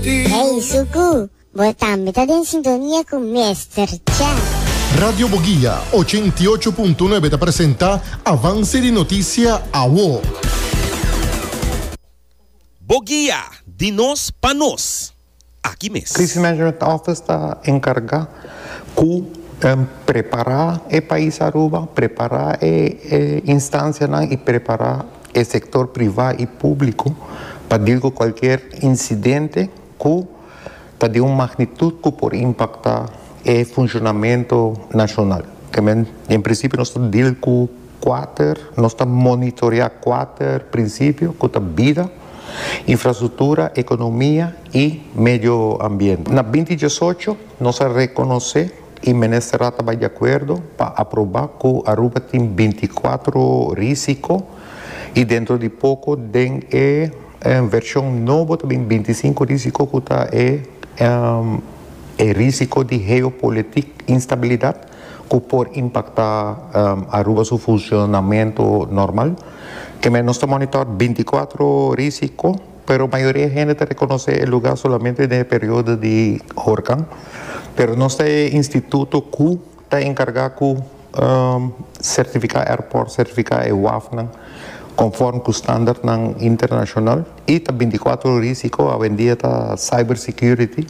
Hey Suku, bo tambe ta den sintonia cu Mester Chef. Radio Boguia ochenta i ocho punto nuebe ta presenta Avance di Noticia Awo. Boguia, di nos pa nos, aki mes. Crisis Management Office ta encarga cu prepara e pais Aruba, prepara e instancianan y prepara e sektor privá i públiko pa dil ku kualker insidente ku ta den un magnitut ku por impaktá e funshonamentu nashonal. Kèmen, en prinsipio nos ta dil ku kuater, nos ta monitoreá kuater prinsipio ku ta bida, infrastruktura, ekonomia i medio ambiente. Na binti diesocho nos a rekonosé. E Ministerrad ta bai di akuerdo pa aproba ku Aruba tin binti kuatro risiko i dentro di poko den e vershon nobo ta bin binti sinku risiko ku ta e e risiko di heopolitik instabilidat ku por impaktá Aruba su funshonamentu normal. Kemey nos ta monitor binti kuatro risiko. Pero mayoria hende ta rekonosé e lugá solamente den e periodo di horkan. Pero nos ta e instituto ku ta enkargá ku sertifiká airport, sertifiká e wafnan konform ku standartnan internashonal i ta bintikwatro ora i si ko awendia ta cybersecurity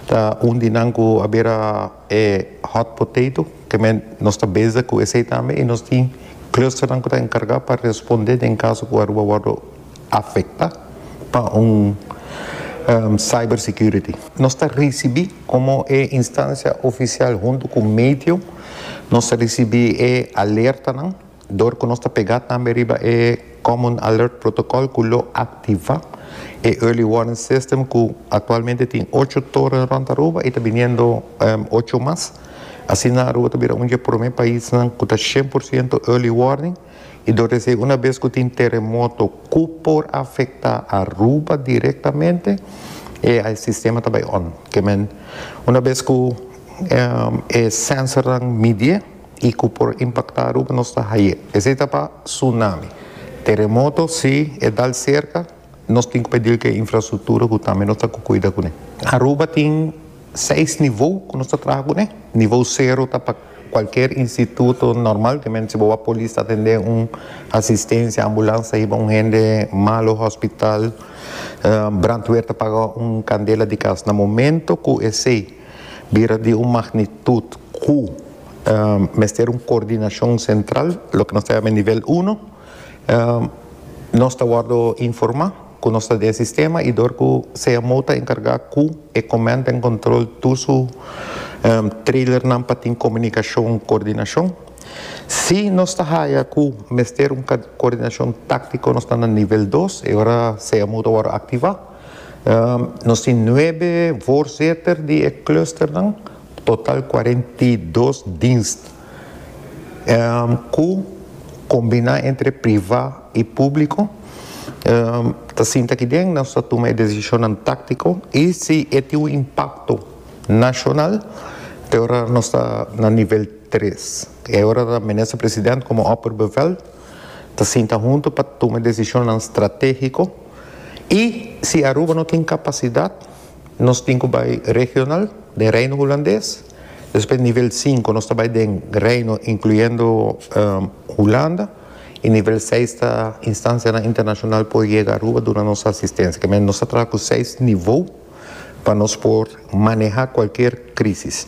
ta un di nan ku a bira. E hot potato tambe nos ta bezig cu esey tambe y nos tin clusternan cu ta encarga pa responde den caso cu Aruba wordo afecta pa un cyber security. Nos ta ricibi como e instancia oficial hunto cu Meteo nos ta ricibi e alertanan. Dor cu nos ta pega tambe riba e Common Alert Protocol cu lo activa e Early Warning System cu actualmente tin ocho toren rond Aruba y ta biniendo ocho mas. Asina Aruba ta bira un dje prome paisnan cu ta shen por ciento Early Warning y dor di esey una bes cu tin teremoto cu por afecta Aruba directamente e sistema ta bay on. Kiemen una bes cu e sensornan midié. y cu por impacta Aruba nos ta haye. Esey ta pa tsunami. Teremoto si e dal cerca nos tin cu pedil cu e infrastructura cu tambe nos ta cu cuida cu ne. Aruba tin seis niveau cu nos ta traha cu ne. Niveau cero ta pa cualkier instituto normaltemente si bo a polis ta atende un asistencia, ambulance ta hiba un hende malo hospital, brandweer ta paga un candela di cas. Na momento cu esey. Bira di un magnitud cu mester un coordinacion central, loke nos ta yama e nivel uno. Nos ta wordo informa cu nos ta den e sistema y dor cu CMO ta encarga cu e command and control tur su trailernan pa tin comunicacion, coordinacion. Si nos ta haya cu mester un coordinacion tactico nos ta na nivel dos, e ora CMO ta wordo activa. Nos tin nuebe voorzitter di e clusternan, total cuarenta i dos dienst cu combina entre priva y publico. Ta sinta aki den nos ta tuma e decisionnan tactico y si e tin un impacto nacional te ora nos ta na nivel tres. E ora ta Minister President como opperbevel ta sinta hunto pa tuma decisionnan strategico. Y si Aruba no tin capacidad, nos tin cu bay regional den Reino Hulandes, despues nivel sinku nos ta bay den Reino incluyendo Hulanda, y nivel seis ta instancianan internacional por yega Aruba duna nos asistencia. Kemey nos ta traha cu seis nivel pa nos por maneha cualkier crisis.